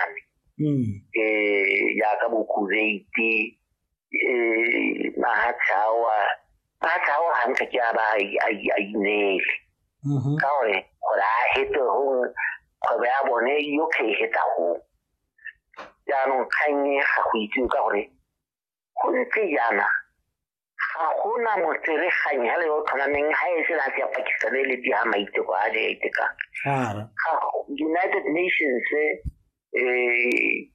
farologane um jaaka bokuveiti um mahatlhawa mahatlhawa gantsi ke a ba a inele mm-hmm. ka gore gore a hete gongwe kgwebo ya bone yotlhe e heta gongwe jaanong kgang e ga go itsewe ka gore go ntse jaana ga gona motseregang hela yo o tlhomameng ga e sena se ya pakistan e le di ga maiteko a le iteka united nations um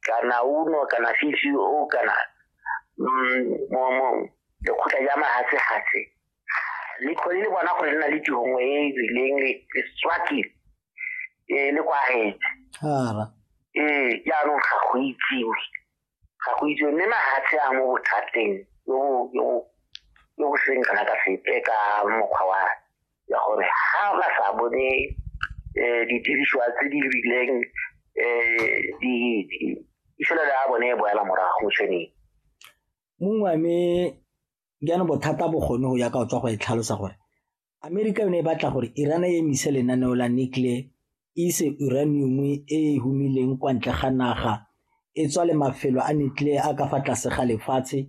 kana uno kana cco kana mm, lekgotla ja mahatsehase le kgone le bona gore le na le tihongwe e e rileng le swaki um le kwagetse ee jaanong ga go itsiwe ga go itse mme mahatshe a mo bothateng yo bo seng kana ka sepe ka mokgwa wa ya gore ga ba sa bone um didirisiwa tse di rileng um ifelelo ya bone e boela morago mo tshweneng mongwe mme jaanong bothata bo kgone go ya ka o tswa go e tlhalosa gore Amerika yone e batla gore Iran e emise lenaneo la nuclear e ise uranium e e humileng kwa ntle ga naga e tswa le mafelo a nuclear a ka fa tlase ga lefatshe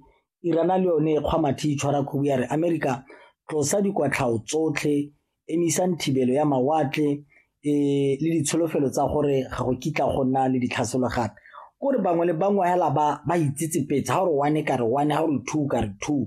Iran le yone e kgwa mathe itshwara khubu ya re Amerika tlosa dikwatlhao tsotlhe emisang thibelo ya mawatle e le ditsholofelo tsa gore ga go kitla go nna le ditlhaselo gape kore bangwe le bangwe hela ba ba itsetsepetse ga gore one ka re one ga gore two ka re two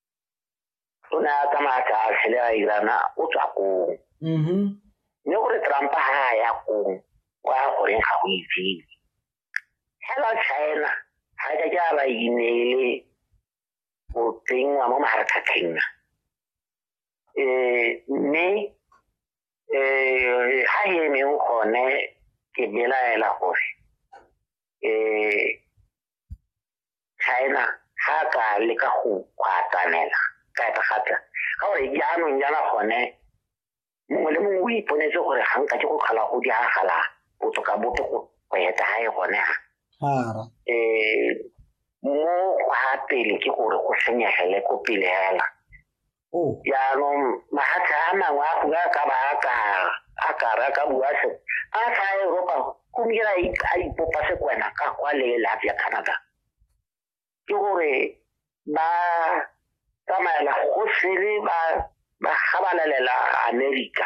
o ne a tsamaya ka tlhele a irana o tswa kong mm-hmm. mme gore trump ga a ya kong kwa goreng ga go itsebe fela china ga ka ke a ba ineele go tsenngwa mo mafaratlhatlheng um mme um ga e emeng gone ke belaela gore um china ha a ka leka go kgwatanela ka etagata ka gore jaanong jana gone mongwe le mongwe o iponetse gore ga nka ke go tlhola go diragala botoka bope go eta ga e gone ga um mo gwa pele ke gore go senyegele ko pele fela oh. jaanong mahatlha a mangwe a gongwe a ka ba a kara a kara ka bua se a sa eropa kumira a ipopa se kwena ka kwa le lafi ya canada ke gore ba tsamaela go sele ba ba gabalelela america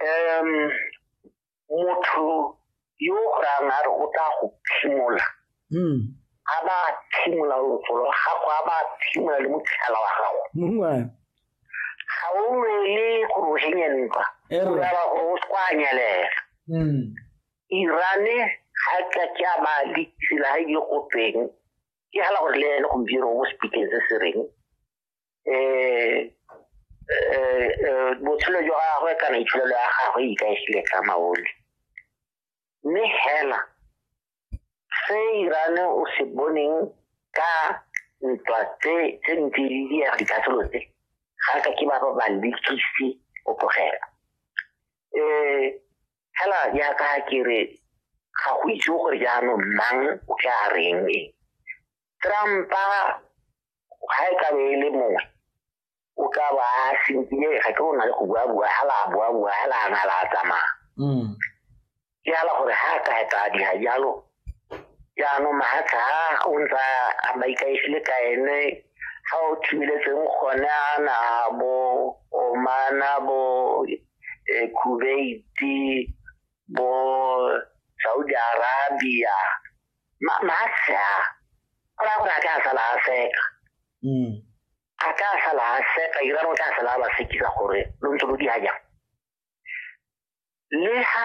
um motho yo go rayang a re o tla go phimola hmm. a ba phimola lotsolo la gago a ba phimola le motlhala wa gago ga o nwele gore o henye ntwa ora gore o se kwa anyelela hmm. irane ga ka ke a ba ditsela ga e di go teng ke hala gore le ene gompieno mo speakeng se se reng eh eh, eh botshelo jwa gagwe kana itsholelo ya gagwe e ikaegile ka maoli mme hela se irane o se boneng ka ntwa tse tse ntse di diega dikatlholo tse ga ka ke ba ba ba lekisi o tlogela um fela jaaka ke re ga go itse gore jaanong mang o tla reng e trampa ga e kabe e le mongwe o ka ba a sentile ga ke ona le go buabua hela a buabua hela a na la a tsamaya mm. ke ala gore ha a ka etla dira jalo jaanong mahatlha a o ntsa a maikaegile ka ene ga o thibeletseng gone a na bo omana bo eh, kubeiti bo saudi arabia ma ma a sa go raya gore a ka sala a seka mm. a ka sala a seka irano o tla sala a ba sekisa gore lo ntse lo di hajang le ha